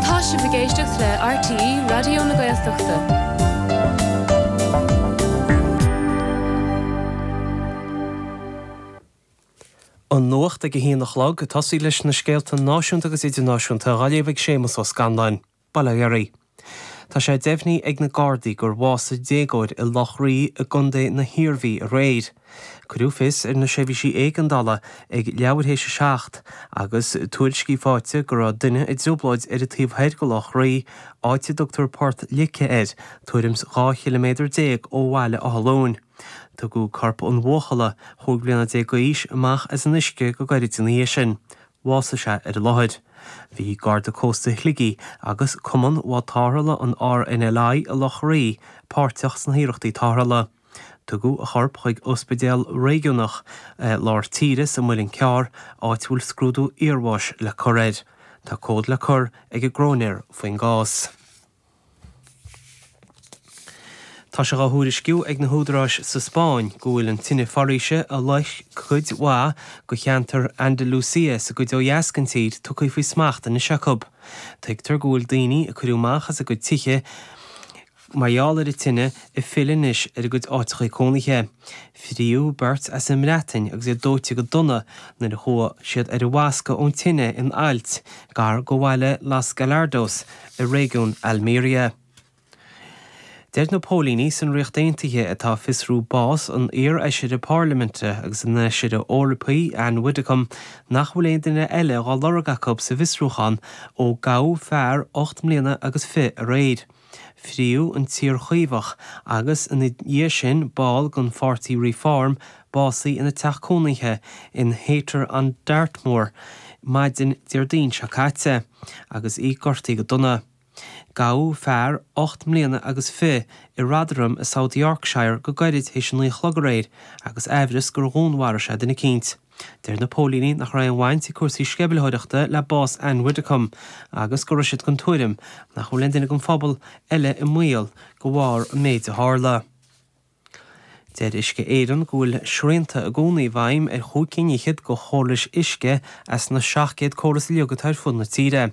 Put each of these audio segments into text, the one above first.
Tá sibh ag éisteacht le RTÉ Raidió na Gaeltachta. An nuacht ag a haon a chlog, ag tosaí leis na scéalta náisiúnta agus idirnáisiúnta dhá léamh ag Séamus Ó Scanláin. Bail ó Dhia oraibh. Tá sé deimhnithe ag na Gardaí gur bhásaigh déagóir i Loch Rí i gContae na hIarmhí aréir. Cuireadh fios ar na seirbhísí éigeandála ag leathuair théis 7 agus tuairiscí faighte go raibh duine i dtrioblóid ar an taobh thoir de Loch Rí, áit a dtugtar Port Lice air, tuairim's 12 chiliméadar ó Bhaile Átha Luain. Tugadh corp an bhuachalla, chúig bliana déag d'aois, amach as an uisce go gairid ina dhiaidh sin. Bhásaigh sé ar an láthair. Bhí Garda Cósta Shligigh agus Cumann Bháid Tarrthála an RNLI i Loch Rí páirteach sna hiarrachtaí tarrthála. Tugadh a chorp chuig ospidéal réigiúnach i lár tíre sa Muileann Cearr, áit a bhfuil scrúdú iarbháis le cur air. Tá comhad le cur ag an gcróinéir faoin gcás. Tá sé á thuairisciú ag na húdaráis sa Spáinn go bhfuil an tine foraoise a loisc cuid mhaith de cheantar Andalucia sa gcuid ó dheas den tír tugtha faoi smacht anois acu. Tuigtear go bhfuil daoine a cuireadh amach as a gcuid tithe Mar gheall ar an tine ag filleadh anois ar a gcuid áiteachaí cónaithe, fríodh beirt as an mBreatain agus iad dóite go dona nuair a chuaigh siad ar an bhfoscadh ón tine in ailt gar do bhaile Los Gallardos i réigiún Almeria. Deir na póilíní san Ríocht Aontaithe atá ag fiosrú bás an iarfheisire Parlaiminte agus an fheisire Eorpaigh Ann Widdecombe nach bhfuil aon duine eile á lorg acu sa bhfiosrúchán ó gabhadh fear ocht mbliana agus fiche aréir. Frítheadh an t-iar-Chaomhach agus, ina dhiaidh sin, ball den pháirtí Reform, básaithe ina teach cónaithe in Haytor on Dartmoor maidin Déardaoin seo caite agus í gortaithe go dona. Gabhadh fear ocht mbliana agus fiche i Rotherham i South Yorkshire go gairid théis a naoi a chlog aréir agus aimhreas gur dhúnmharaigh sé duine eicínt. Deir na póilíní nach raibh aon bhaint ag cúrsaí sceimhlitheoireachta le bás Ann Widdecombe agus go raibh siad den tuairim nach bhfuil aon duine den phobal eile i mbaol de bharr an méid a tharla. Deir Uisce Éireann go bhfuil srianta i gcónaí i bhfeidhm ar chúig cinn fhichead de chórais uisce as na 700 córas uilig atá ar fud na tíre.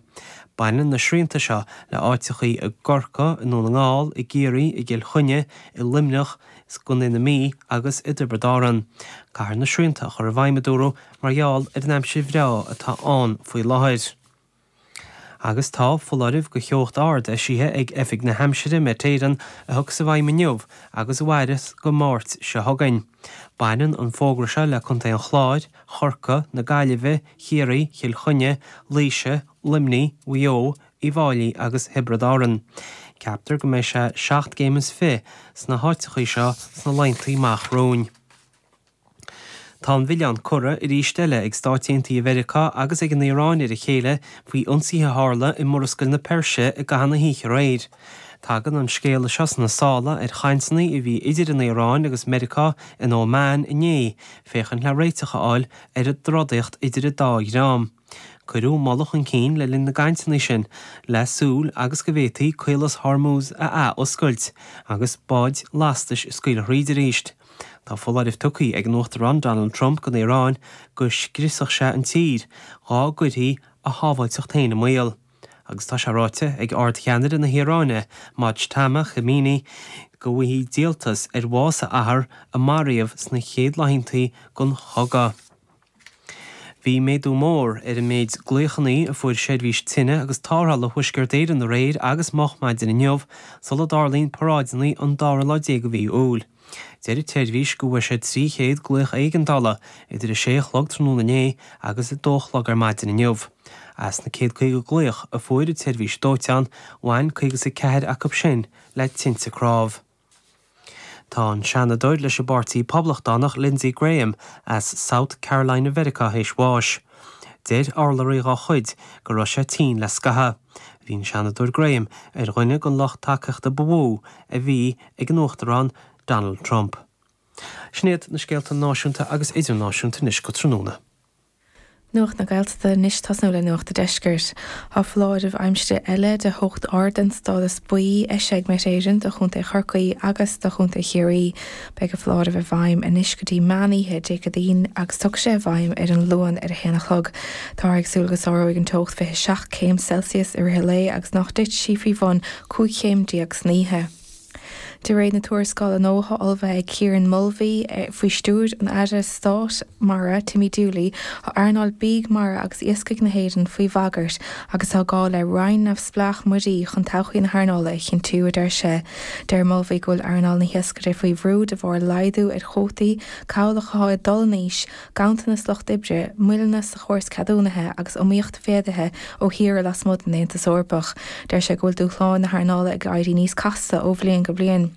Baineann na srianta seo le háiteachaí i gCorcaigh, i nDún na nGall, i gCiarraí, i gCill Chainnigh, i Luimneach, is i gContae na Mí agus i dTiobraid Árann. Caithfear na srianta a chur i bhfeidhm, a dúradh, mar gheall ar an aimsir bhreá atá ann faoi láthair. Agus tá foláireamh de theocht ard eisithe ag Oifig na hAimsire, Met Éireann, a thiocfas i bhfeidhm inniu agus a mhairfeas go Máirt seo chugainn. Baineann an fógra seo le contaetha an Chláir, Chorcaí, na Gaillimhe, Chiarraí, Chill Chainnigh, Laoise, Luimnigh, Mhaigh Eo, Uíbh Fháilí agus Thiobraid Árann. Ceaptar go mbeidh sé seacht gcéim is fiche sna háiteachaí seo sna laethanta amach romhainn. Tá an milleán curtha arís eile ag Stáit Aontaithe Mheiriceá agus ag an Iaráin ar a chéile faoi ionsaithe a tharla i Murascaill na Peirse i gcaitheamh na hoíche aréir. Tagann an scéala seo sna sála ar chainteanna a bhí idir an Iaráin agus Meiriceá in Óman inné féachaint le réiteach a fháil ar an dtrodaíocht idir an dá dhream. Cuireadh moladh chun cinn le linn na gcainteanna sin le súil agus go bhféadfaí Caolas Hormuz a athoscailt agus báid lastais a scaoileadh thríd arís. Tá foláirimh tugtha ag an Uachtarán Donald Trump don Iaráin go scriosfadh sé an tír dhá gcuirfí a shábháilteacht féin i mbaol agus tá sé ráite ag Ard-Cheannaire na hIaráine Mojtaba Khamenei go bhfaighidh sé díoltas ar bhás a athar a maraíodh sna chéad laethanta den chogadh. Bhí méadú mór ar an méid glaochannaí a fuair Seirbhís Tine agus Tárrthála Thuaisceart Éireann aréir agus moch maidin inniu sula dtarlaíonn paráideanna an dara lá déag de mhí Iúil. Deir an tSeirbhís go bhfuair sé 300 glaoch éigeandála idir 6 a chlog tráthnóna inné agus 2 a chlog ar maidin inniu. As na 151 glaoch a fuair an tSeirbhís Dóiteáin, bhain 54 acu sin le tinte cnámh. Tá an Seanadóir leis an bPáirtí Poblachtánach Lindsey Graham as South Carolina Mheiriceá théis bháis. Deir urlabhraí dá chuid go raibh sé tinn le scaitheadh. Bhí an Seanadóir Graham ar dhuine den lucht tacaíochta ba mhó a bhí ag an Uachtarán Donald Trump. Sin iad na scéalta náisiúnta agus idirnáisiúnta anois go tráthnóna. Nuacht na Gaeltachta anois ag tosnú le Nuacht a' Deiscirt. Tá foláireamh aimsire eile de theocht ard den stádas buí eisithe ag Met Éireann do Chontae Chorcaí agus do Chontae Chiarraí. Beidh an foláireamh i bhfeidhm anois go dtí meán oíche Dé Céadaoin agus tiocfaidh sé i bhfeidhm ar an Luan ar a haon a chlog. Táthar ag súil go sáróidh an teocht 27 céim Celsius i rith a lae agus nach dtitfidh sí faoi bhun 15 chéim san oíche. De réir na tuarascála nua atá ullmhaithe ag Kieran Mulvey, faoi stiúir an Aire Stáit Mara, Timmy Dooley, tá earnáil bídh mara agus iascaigh na hÉireann faoi bhagairt agus tá gá le Roinn neamhspleách Muirí chun todhchaí na hearnála a chinntiú, a deir sé. Deir Mulvey go bhfuil earnáil na hiascaireachta faoi bhrú de bharr laghdú ar chuótaí cabhlach atá ag dul in aois, ganntanas lucht oibre, moilleanna sa chóras ceadúnaithe agus iomaíocht mhéadaithe ó thíortha lasmuigh den Aontas Eorpach, deir sé go bhfuil dúshláin na hearnála ag éirí níos casta ó bhliain go bliain.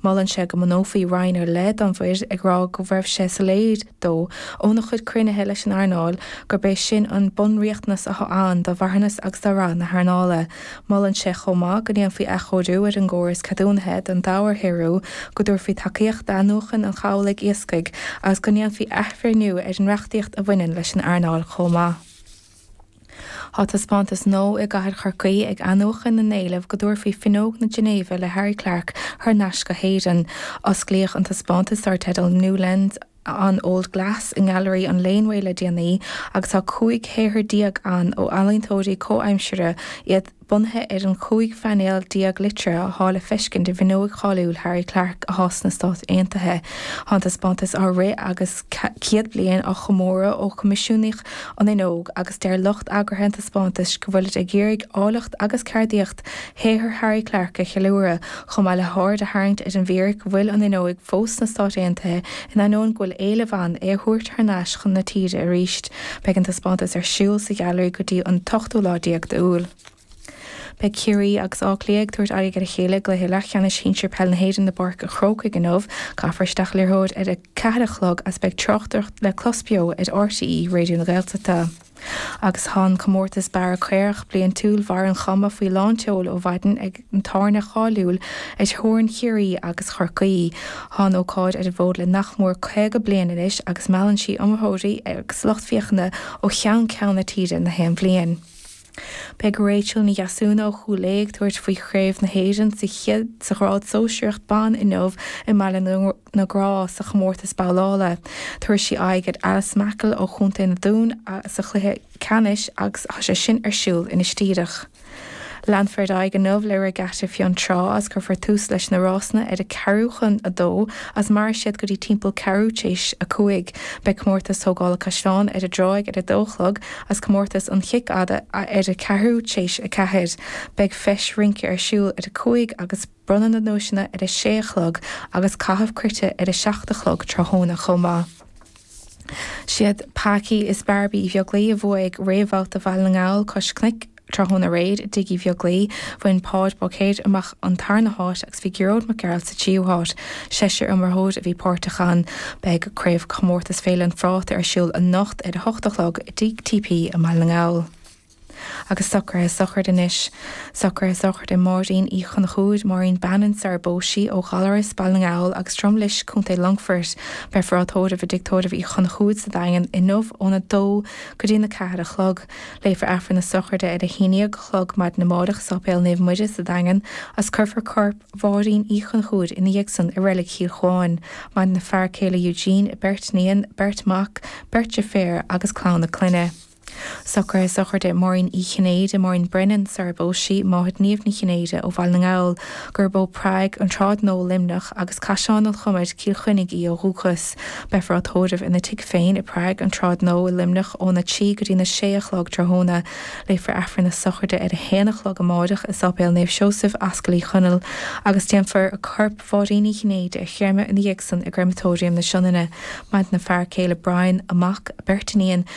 Molann sé go mbunófaí roinn ar leith don mhuir, ag rá go raibh sé soiléir dó óna chuid cruinnithe leis an earnáil gurb é sin an bunriachtanas atá ann do mharthanas agus do rath na hearnála. Molann sé chomh maith go ndéanfaí athchóiriú ar an gcóras ceadúnaithe don dobharshaothrú, go dtabharfaí tacaíocht d'athnuachan an chabhlaigh iascaigh agus go ndéanfaí athbhreithniú ar an reachtaíocht a bhaineann leis an earnáil chomh maith. Tá taispeántas nua i gcathair Chorcaí ag athnuachan na n-éileamh go dtabharfaí Fuinneog na Ginéive le Harry Clarke thar n-ais go hÉirinn. Osclaíodh an taispeántas dar teideal New Lens, on Old Glass i nGailearaí an Laneway le déanaí agus tá 15 shaothar ann ó ealaíontóirí comhaimsire, iad bunaithe ar an 15 phainéal liteartha atá le feiscint i bhfuinneoig cháiliúil Harry Clarke atá sna Stáit Aontaithe. Tá an taispeántas á rith agus 100 bliain á chomóradh ó coimisiúnaíodh an fhuinneog agus deir lucht eagraithe an taispeántais go bhfuilid ag iarraidh áilleacht agus ceardaíocht shaothar Harry Clarke a cheiliúradh, chomh maith le haird a tharraingt ar an bhfíric go bhfuil an fhuinneoig fós sna Stáit Aontaithe in ainneoin go bhfuil éileamh ann é a thabhairt thar n-ais chun na tíre arís. Beidh an taispeántas ar siúl sa Ghailearaí go dtí an t-ochtú lá déag d'Iúil. Beidh Ciarraí agus Áth Cliath ag tabhairt aghaidh ar a chéile i gcluiche leathcheannais shinsir peil na hÉireann i bPáirc an Chrócaigh inniu. Caithfear isteach an liathróid ar a ceathair a chlog agus beidh tráchtaireacht le clos beo ar RTÉ Raidió na Gaeltachta. Agus tá an comórtas Bearradh Caorach bliaintiúil Bharr an Chuma faoi lán tseoil ó mhaidin ag an tábhairne cháiliúil ar theorainn Chiarraí agus Chorcaí. Tá an ócáid ar an bhfód le nach mór 50 bliain anois agus meallann sí iomaitheoirí agus lucht féachana ó cheann ceann na tíre na haon bhliain. Beidh Rachel Ní Dheasúna ó Chúil Aodha ag tabhairt faoi Chraobh na hÉireann sa ghrád sóisearach ban inniu i mBaile na na Graí sa chomórtas babhlála. Tabharfaidh sí aghaidh ar Alice Mackle ó Chontae an Dúin sa chluiche ceannais agus tá sé sin ar siúl anois díreach. Leanfar ar aghaidh inniu le Regatta Fionn Trá agus cuirfear tús leis na rásanna ar a ceathrú chun a dó agus mairfidh siad go dtí timpeall ceathrú t'éis a cúig. Beidh Comórtas Tógála Caisleán ar an dTráigh ar a dó a chlog agus Comórtas an Chic Fhada ar a ceathrú t'éis a ceathair. Beidh Feis Rince ar siúl ar a cúig agus. Bronnadh na nduaiseanna ar a sé a chlog agus caitheamh cruite ar a seacht a chlog tráthnóna chomh maith. Siad Packy is Barbie Uí Bheaglaoi a bhuaigh réamhbhabhta Bhaile na nGall Cois Cnoic tráthnóna aréir i dTigh Uí Bheaglaoi. Bhain Páid Báicéir amach an tarna háit agus bhí Gearóid Mac Gearailt sa tríú háit. Seisear iomaitheoir a bhí páirteach ann. Beidh Craobhchomórtas Féile an Phráta ar siúl anocht ar a hocht a chlog i dTigh TP i mBaile na nGall. agus socruithe sochraide anois, socruithe sochraide Mháirín Uí Chonchúir, Máirín Bannon sara bpós sí ó Ghallarais, Baile na nGall, agus Droim Lis, Co. Longfoirt, beifear á tórramh i dtigh tórraimh Uí Chonchúir sa Daingean inniu ón 2 go dtí an 4 a chlog. Léifear Aifreann na sochraide ar a haon déag a chlog maidin amárach i Sáipéal Naomh Muire sa Daingean agus cuirfear corp Mháirín Uí Chonchúir ina dhiaidh san i reilig Chill Chuáin. Maireann a fear céile Eugene, a beirt iníon, beirt mac, beirt dheirféar agus clann a clainne. Socruithe sochraide Mháirín Uí Chinnéide, Máirín Brennan, sara bpós sí, máthair Niamh Ní Chinnéide ó Bhaile na nGall, gurb ó Prague, an tSráid Nua, Luimneach, agus Caisleán an Chomair, Cill Chainnigh, í ó dhúchas. Beifear á tórramh ina tigh féin i Prague, an tSráid Nua, i Luimneach, óna trí go dtí na sé a chlog tráthnóna. Léifear Aifreann na sochraide ar a haon a chlog amáireach i Sáipéal Naomh Seosamh, Ascaill Uí Chonaill, agus déanfar corp Mháirín Uí Chinnéide a chréamadh ina dhiaidhsan i gCréamatóiriam na Sionainne, maireann a fear céile Brian, a mac, a beirt iníon,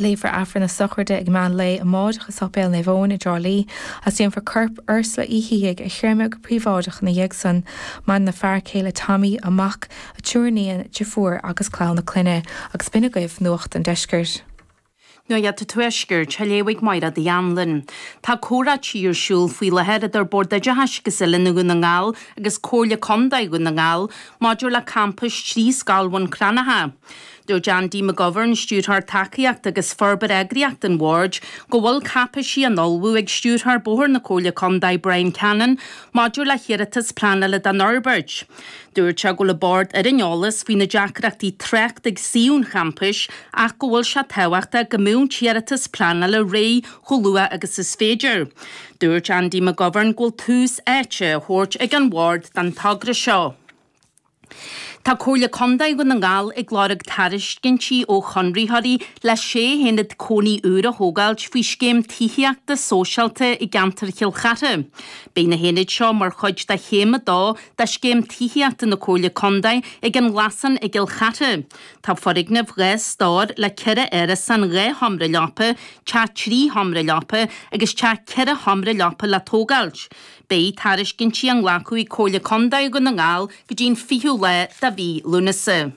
Léifear Aifreann na sochraide ag meán lae amáireach i Sáipéal Naomh Eoin i dTrá Lí is déanfar corp Ursula Uí Shíthigh a chréamadh go príobháideach ina dhiaidh san. Maireann a fear céile Tommy, a mac, a triúr iníon, deirfiúr agus clann a clainne agus b'in agaibh Nuacht an Deiscirt. Nuacht an Tuaiscirt, á léamh ag Máire Uí Anluain. Tá comhráití ar siúl faoi láthair idir Bord Oideachais agus Oiliúna Dhún na nGall agus Comhairle Contae Dhún na nGall maidir le campas trí scoil Bhun Cranncha. Dúirt Andy McGovern, Stiúrthóir Tacaíochta agus Forbartha Eagraíocht an Bhoird, go bhfuil cáipéisí á n-ullmhú ag Stiúrthóir Bóthair na Comhairle Contae, Bryan Cannon, maidir le hiarratas pleanála don fhorbairt. Dúirt sé go bhfuil an Bord ar an eolas faoi na deacrachtaí tráchta ag suíomh an champais ach go bhfuil sé tábhachtach go mbeadh an t-iarratas pleanála réidh chomh luath agus is féidir. Dúirt Andy McGovern go bhfuil tús áite á thabhairt ag an Bhord don togra seo. Tá Comhairle Contae Dhún na nGall ag lorg tairiscintí ó chonraitheoirí le sé haonad cónaí úr a thógáilt faoi scéim tithíochta sóisialta i gceantar Chill Chartha. Beidh na haonaid seo mar chuid de chéim a dó de scéim tithíochta na Comhairle Contae ag An Glasán i gCill Chartha. Tá foirgneamh dhá stór le ceithre árasán dhá sheomra leapa, teach trí sheomra leapa agus teach ceithre sheomra leapa le tógáilt. Beidh tairiscintí á nglacadh ag Comhairle Contae Dhún na nGall go dtí an 20ú lá de mhí Lúnasa.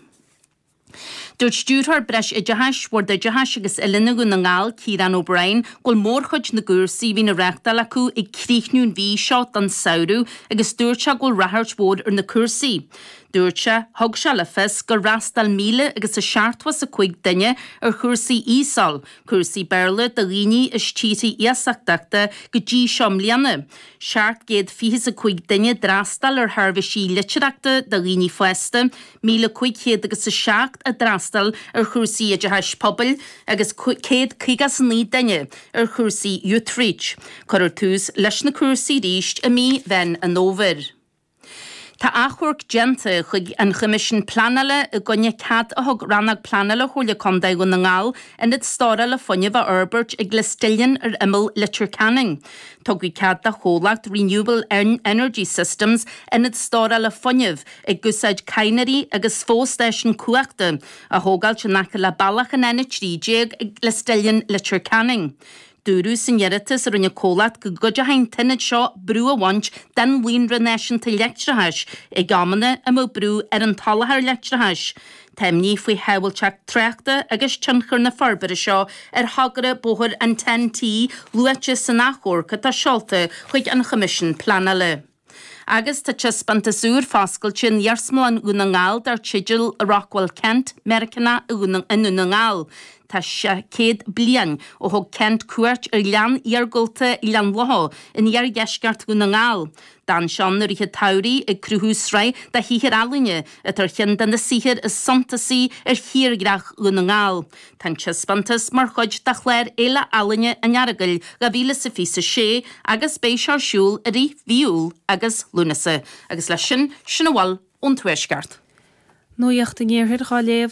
Dúirt Stiúrthóir Breis Oideachais Bhord Oideachais agus Oiliúna Dhún na nGall, Ciarán O'Brien, go bhfuil mórchuid na gcúrsaí a bhíonn á reáchtáil acu ag críochnú an mhí seo don samhradh agus dúirt sé go bhfuil ráchairt mhór ar na cúrsaí. Dúirt sé, Thug sé le fios gur fhreastail míle agus a seachtó 's a cúig duine ar chúrsaí ESOL, Cúrsaí Béarla do dhaoine as tíortha iasachtacha go dtí seo mbliana. 725 duine a d'fhreastail ar sheirbhísí litearthachta do dhaoine fásta, 1,507 a d'fhreastail ar chúrsaí oideachais pobail agus 159 duine ar chúrsaí Youth Reach. Cuirfear tús leis na cúrsaí arís i mí Mheán an Fhómhair. Tá achomharc déanta chuig an Choimisiún Pleanála i gcoinne cead a thug Rannóg Pleanála Chomhairle Contae Dhún na nGall ionad stórála fuinnimh a fhorbairt ag Listillion ar imeall Leitir Ceanainn. Tugadh cead don chomhlacht Renewable Energy Systems ionad stórála fuinnimh, ag úsáid cadhnraí agus fostáisiún cumhachta, a thógáilt in aice le bealach an N13 ag Listillion, Leitir Ceanainn. Dúradh san iarratas a rinne an comhlacht go gcuideodh an t-ionad seo brú a bhaint den líonra náisiúnta leictreachais ag amanna a mbeadh brú ar an tsoláthar leictreachais. Tá imní faoi shábháilteacht tráchta agus tionchar na forbartha seo ar thogra bóthair an TEN-T luaite san achomharc atá seolta chuig an Choimisiún Pleanála. Agus tá taispeántas úr foscailte in Iarsmalann Dhún na nGall dar teideal 'Rockwell Kent, Meiriceánach i nDún na nGall'. Tá sé céad bliain ó thug Kent cuairt ar ghleann iargúlta Ghleann Locha in iardheisceart Dhún na nGall. D'fhan sé ann i rith an tsamhraidh ag cruthú sraith de shaothair ealaíne atá ar cheann de na saothair is suntasaí ar thírdhreach Dhún na nGall. Tá an taispeántas mar chuid de chlár Fhéile Ealaíne an Earagail 2026 agus beidh sé ar siúl i rith mhí Iúil agus Lúnasa. Agus leis sin, sin a bhfuil ón Tuaisceart. Nuacht an Iarthair dhá léamh.